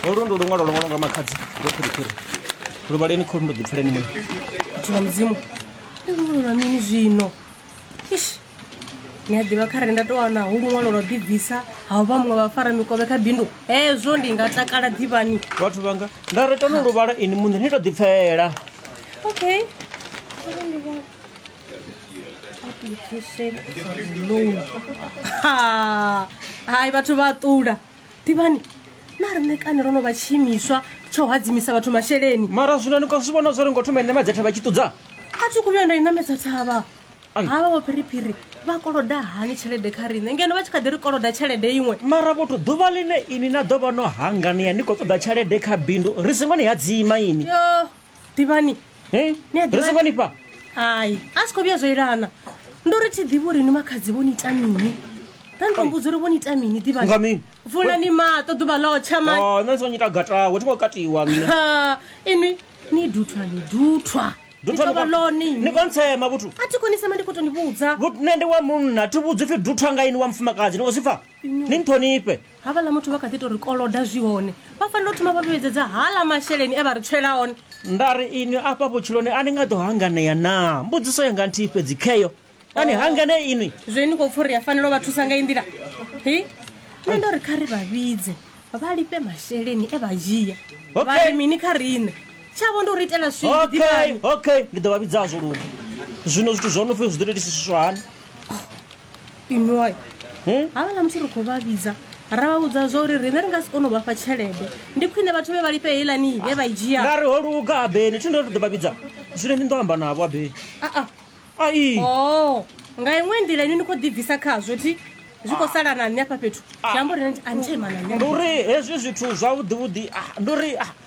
holu ndo luṅwalo lwo ṅwalwa nga makhadzi ndo phiriphiri luvhaleni kholu ndo ḓipfuleni mwe muthu wa mudzimu ndi luṅwalo lwa mini zwino ish ni a ḓivha kha re nda tou wana hu luṅwalo lwa ḓibvisa ha u vha muṅwe vhafara mikovhe kha bindu hezwo ndi nga takala ḓivhani vhathu vhanga nda ri tano luvhala ini muṋe ni to ḓipfela okay Ha, hai vhathu vha ṱula ḓivhani na riṋe kani ro no vha tshiimiswa tsha u hadzimisa vhathu masheleni mara zwino ni khou zwi vhona zwo ri ngo thoma ine madzhetha vha tshi ṱudza a thi khou vhuya nda i namedza thavha Ai. havha vho phiriphiri vha koloda hani tshelede kha riṋe ngeno vha tshi kha ḓi ri koloda tshelede iṅwe mara vhothu ḓuvha ḽine ini na ḓo vha no hanganea ni khou ṱoḓa tshelede kha bindu ri singo ni hadzima ini yo ḓivhani Hey, Ni a ḓivha- ri songo ni fha hai a si khou vhuya zwo ilana ndo ri thi ḓivhi uri ni makhadzi vho ni ita mini nda ni to mbudza uri vho ni ita mini Nga ḓivhani mini? vulani maṱo ḓuvha ḽo tsha mani Oh, nṋe ndi songo nyita gatawe thi ngo katiwa nṋe Ha, inwi ni duthwa ni duthwa Ni Duthwa tovha ni kwa- lone ni inwi. kontsema vhuthu a thi konisema ndi khou to ni vhudza Vhu- nṋe ndi wa munna thi vhudzi pfi duthwa nga ini wa mufumakadzi ni khou zwi pfa ni nṱhonifhe havhala muthu vha kha ḓi to ri koloda zwi hone vha fanela u thoma vha vhuyedzedza hala masheleni e vha ri tswela one nda ri inwi afha vhutshiloni a ni nga ḓo hanganea naa mbudziso yanga nthihi fhedzi kheyo a ni hanganee inwi zwe ni khou pfha uri a fanela u vha thusa nga i nḓila hi nṋe ndo ri kha ri vha vhidze vha lifhe masheleni e vha dzhia Okay. vha ri mini kha riṋe tshavho ndi u ri itela swii okay ḓivhani okay ndi ḓo vha vhidzazwo luni zwino zwithu zwo no pfhi zwi ḓo tou itisisiswa hani inwi wayo havhala musi ri khou vha vhidza ra vha vhudza zwa uri riṋe ri nga si kone u vhafha tshelede ndi khwine vhathu vhe vha lifhe heilani vhe vha i dzhia nda ri ho luga abeni thi ndo ri ḓo vha vhidza zwino ni ndo amba navho abeni aa ai o nga iṅwe nḓila inwi ni khou ḓibvisa khazwo thi zwi khou sala na nṋe afha fhethu zwi amba uri a ni tsha ima na nṋe ndi uri hezwi zwithu zwavhuḓivhuḓi ah, ndi uri ah,